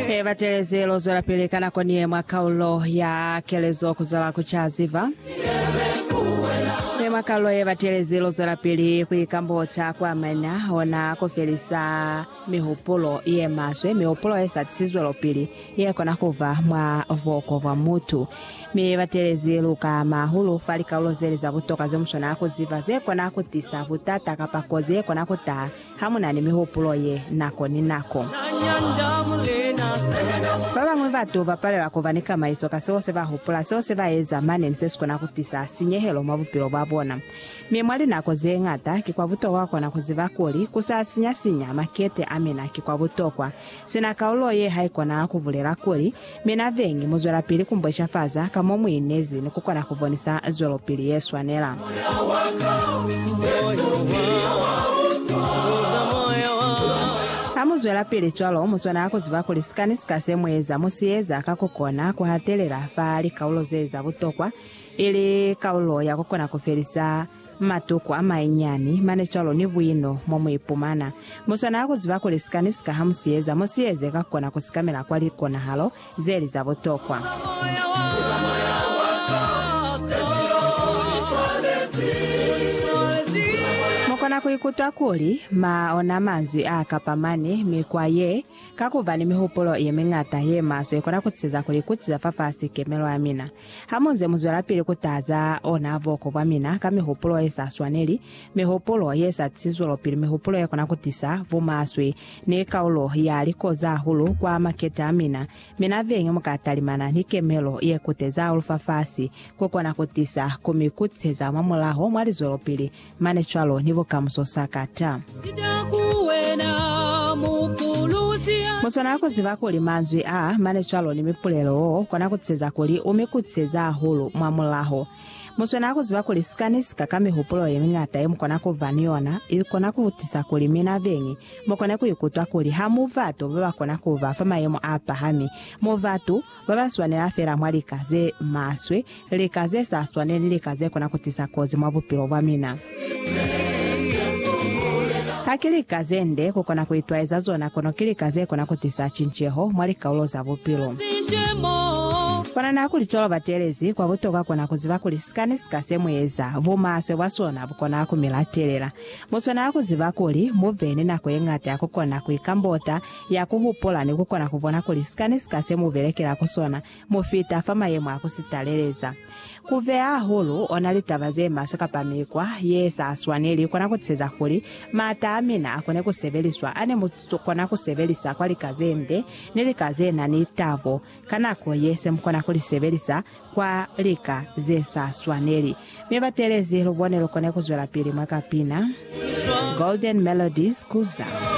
He batelezi lo zwelapili ka nako nie mwa kaulo ya kelezo kuzwala ku ca ziba. Mi mwa kaulo ye batelezi lo zwelapili ku ikambota kwa maina ona ku felisa mihupulo ye maswe, mihupulo ye sa tisi zwelopili ye kona kuba mwa buko bwa mutu. Mi batelezi lu kaama hahulu fa likaulo zeli za butoka ze muswanela ku ziba ze kona ku tisa butata kapa kozi ye kona ku taha Ha mu na ni mihupulo ye nako ni nako. Ba bañwi batu ba palela ku ba ni kamaiso ka seo se ba hupula, seo se ba eza mane ni se si kona ku tisa sinyehelo mwa bupilo bwa bona. Mi mwa linako ze ñata, ki kwa butokwa ku kona ku ziba kuli ku sa sinya-sinya makete a mina ki kwa butokwa. Sina kaulo ye haikona kubulela kuli, Mi na bengi muzwelapili kumbweshafaza ka mo muinezi ni kukona kubonisa zwelopili yeswanela. Hamuzwelapili cwalo, muswanela kuziba kuli sika ni sika se mueza, musieza ka kukona kuhatelela fa likaulo zeza butokwa, ili kaulo ya kukona kufelisa Matuku amainyiani mane cwalo ni buino mo mu ipumana. Mu swanela ku ziba kuli sika ni sika ha mu si eza, mu si eze ka kona ku sikamela kwa likonahalo ze li za butokwa. Mu kona ku ikutwa kuli ma ona manzwi a kapamani. Mikwa ye, ka ku ba ni mihupulo ye miñata ye maswe, i kona ku tiseza kuli kuti za fafasi kemelo ya mina. Hamunze muzwelapili kutaza ona buko bwamina ka mihupulo yesa swaneli, mihupulo yesa tisi zwelopili, mihupulo yakona kutisa bumaswe, ni kaulo ya likozi hahulu kwa makete amina, mi nabeñi muka talimana ni kemelo yekuteza hahulu fafasi, kukona kutisa kumikutiseza mwamulaho mwa lizwelopili Mane cwalo ni bukamuso sa ka ta. Muswana ku ziba kuli manzwi a mane cwalo ni mipulelo wo kona ku tiseza kuli u mi kutiseza hahulu mwa mulaho. Muswana ku ziba kuli sika ni sika ka mihupulo ye miñata ye mu kona ku ba ni yona i kona ku tisa kuli mina beñi mu kone ku ikutwa kuli ha mu batu ba ba kona ku ba fa mayemo a pahami, mu batu Ba ba swanela fela mwa lika ze maswe, lika ze sa swane ni lika ze kona ku tisa kozi mwa bupilo bwa mina. Ha ki lika ze nde ku kona ku itwaeza zona, kono ki lika ze kona ku tisa cinceho mwa likaulo za bupilo. Kwa nana ya kuli cwalo batelezi, kwa butokwa kona ku ziba kuli sika ni sika se mu eza, bumaswe bwa sona bu kona ku mi latelela. Mu swanela ku ziba kuli mu be ni nako ye ñata ya ku kona ku ikambota, ya ku hupula ni ku kona ku bona kuli sika ni sika se mu belekela ku sona mu fita fa mayemo a ku si taleleza. Ku beya hahulu ona litaba ze maswe kapa mikwa ye sa swaneli kona ku teza kuli m'ata a mina a kone ku sebeliswa a ne mu kona ku sebelisa kwa lika ze nde ni lika ze na ni tabo ka nako ye se mu kona ku li sebelisa kwa lika ze sa swaneli. Mi batelezi lu bone lu kone ku zwelapili mwa kapina Golden Melodies ku za.